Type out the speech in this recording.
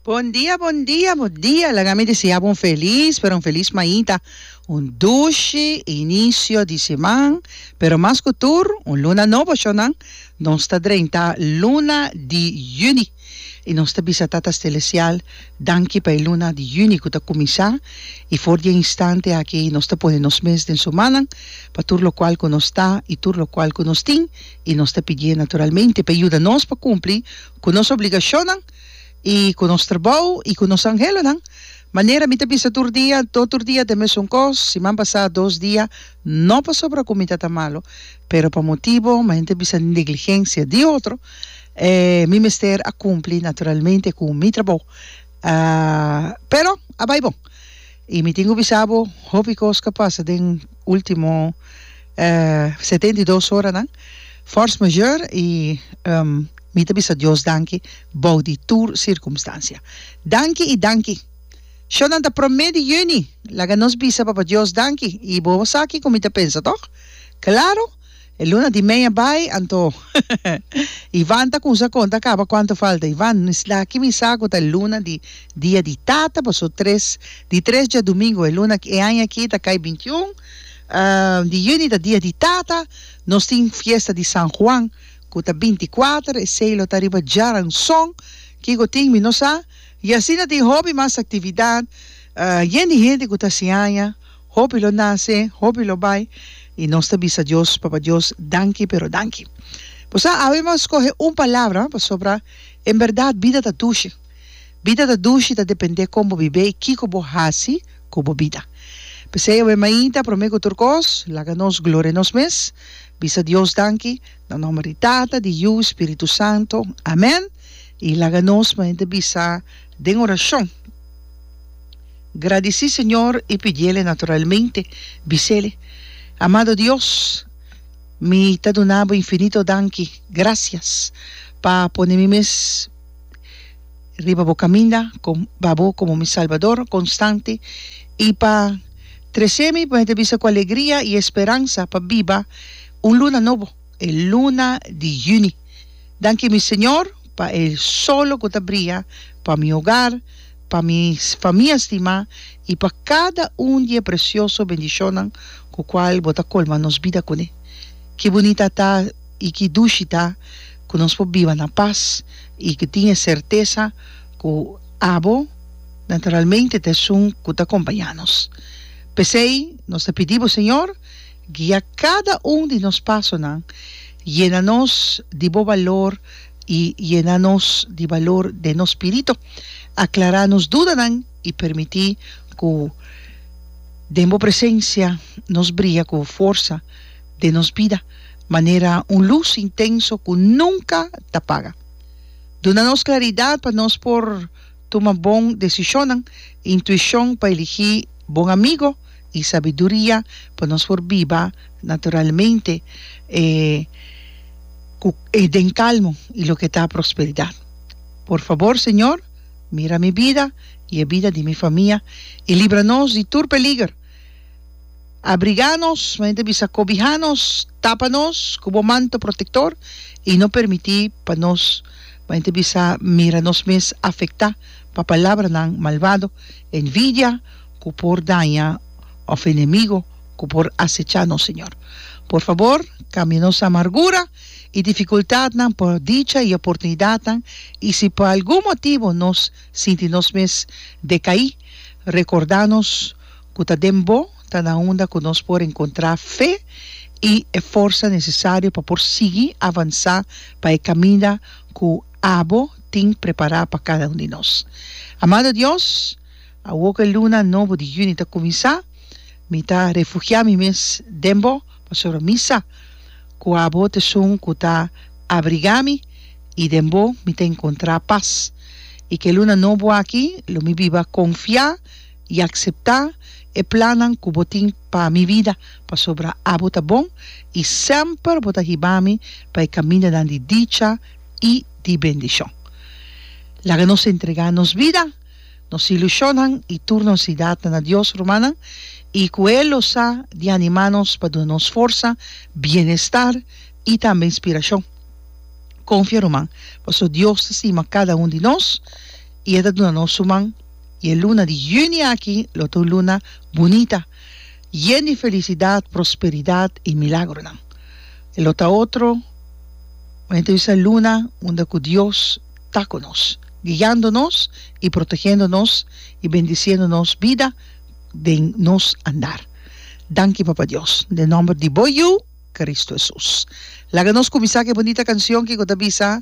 Bon dia bon dia bon dia laga mi deseabo un felis pero un felis mainta un dushi inicio di siman pero mas cu tur un luna nobo shonan nos ta drenta luna di juni y nos ta bisa tata stelesial danki pa e luna di juni cu ta cuminsa y for di e instante aki nos ta pone nos mes den su manan pa tur locual cu nos ta y tur locual cu nos tin I nos ta pidié naturalmente pa e yuda nos pa kumpli ku nos obligashonnan i ku nos trabou i ku nos anhelonan. Manera mi ta bisa tur dia, no tur dia ta e mesun kos, siman pasá dos dia, no pasobra ku mi ta ta malu, pero pa motibu mi ta bisa negligensia di otro, mi mester a kumpli naturalmente ku mi trabou. Pero a bai bon. I mi tin ku bisa bo, hopi kos ku a pasa den último. E setenta i dos oranan, fors major i mi ta bisa Dios danki bou di tur sirkumstansia. Danki i danki! Shonnan ta promé di yüni. Laga nos bisa Papa Dios danki. I bo a sa kiko mi ta pensa, tòg? Klaro! E luna di mei a bai, anto Ivan ta kumsa konta kaba kuantu falta. Ivan, no eslaki mi sa ku ta luna di dia di tata, paso tres di tres djadumingu. E luna e aña aki ta kai binti un. Di juni ta dia di tata, nos tin fiesta di San Juan cu ta binticuater, esey lo ta riba djaranzon, kico tin mi no sa, y asina tin hopi mas actividad, yen di hende cu ta siaña, hopi lo nace, hopi lo bay, y nos ta bisa Dios, Papa Dios, danki pero danki. Bo sa awe mas scoge un palabra, pasobra en berdad bida ta dushi. Bida ta dushi ta depende kon bo bibé i kiko bo hasi ku bo bida. P'esei awe mainta, promé ku tur kos, laga nos gloria nos mes, bisa Dios danki, na nòmber di Tata, di Yu, Spiritu Santu. Amèn. I laga nos mainta bisa den orashon, Gradisí Señor i pidiel e naturalmente bisel, Amado Dios, mi ta duna bo infinito danki, grasias, pa pone mi mes. riba bo kaminda kon ba bo komo mi Salbador konstante i pa tresé mi mester bisa ku alegria i esperansa pa biba un luna nobo, e luna di yüni. Danki mi Señor pa e solo ku ta bria pa mi hogar, pa mi famia stimá i pa kada un di e presioso bendishonnan ku kual bo ta kolma nos bida kuné. Ke bunita ta! i ki dushi ta ku nos por biba na pas i ku tin e sertesa ku abo naturalmente ta esun ku ta kompañá nos. P'esei nos ta pidi bo, Señor, guia kada un di nos pasonan, yena nos di bo balor i yena nos di balor den nos spirito, aklará nos dudanan i permití ku den bo presensia nos bria ku forsa. den nos bida manera un lus intenso cu nunca ta paga. Duna nos claridad pa nos por tuma bon decisionnan, intuicion pa eligi bon amigo y sabiduria pa nos por biba naturalmente e cu e den calmo y loke ta prosperidad. Por fabor, Señor, mira mi bida y e bida di mi famia y libra nos di tur peliger. abrigá nos, men ta bisa kobihá nos, tapa nos ku bo manto protektor i no permití pa nos, men ta bisa mira nos mes afektá pa palabranan malvado, envidia ku por daña òf enemigo ku por asechá nos, Señor. Por fabor, kambia nos amargura i difikultatnan pa dicha i oportunidatnan, i si pa algun motibu nos sinti nos mes dekaí, rekordá nos ku ta den bo ta na unda ku nos por enkontrá fe i e forsa nesesario pa por sigui avansá pa e kaminda ku abo tin prepará pa kada un di nos. Amado Dios, awor ku e luna nobo di yüni ta kuminsá, mi ta refugiá mi mes den bo, pasobra mi sa ku abo ta esun ku ta abrigá mi, i den bo mi ta enkontrá pas. I ku e luna nobo aki lo mi biba konfiá. i akseptá e plannan ku bo tin pa mi bida, pasobra abo ta bon i semper bo ta hibami pa e kamindanan di dicha i di bendishon. Laga nos entregá nos bida, nos ilushonnan i tur nos sidatnan na Dios, rumannan, i ku e lo sa di animá nos pa duna nos forsa, bienestar i tambe inspirashon. Konfia, ruman, paso Dios ta stima kada un di nos i e ta duna nos su man. y e luna di juni aki lo ta un luna bunita, yen di felicidad, prosperidad y milagronan. E lo ta otro bonita bisa luna unda cu Dios ta cu nos, guiando nos y protegiendo nos y bendiciendo nos bida den nos andar. Danki Papa Dios, den nomber di bo Yu, Cristo Jesus. Laga nos cuminsa cu e bonita cancion ki cu ta bisa.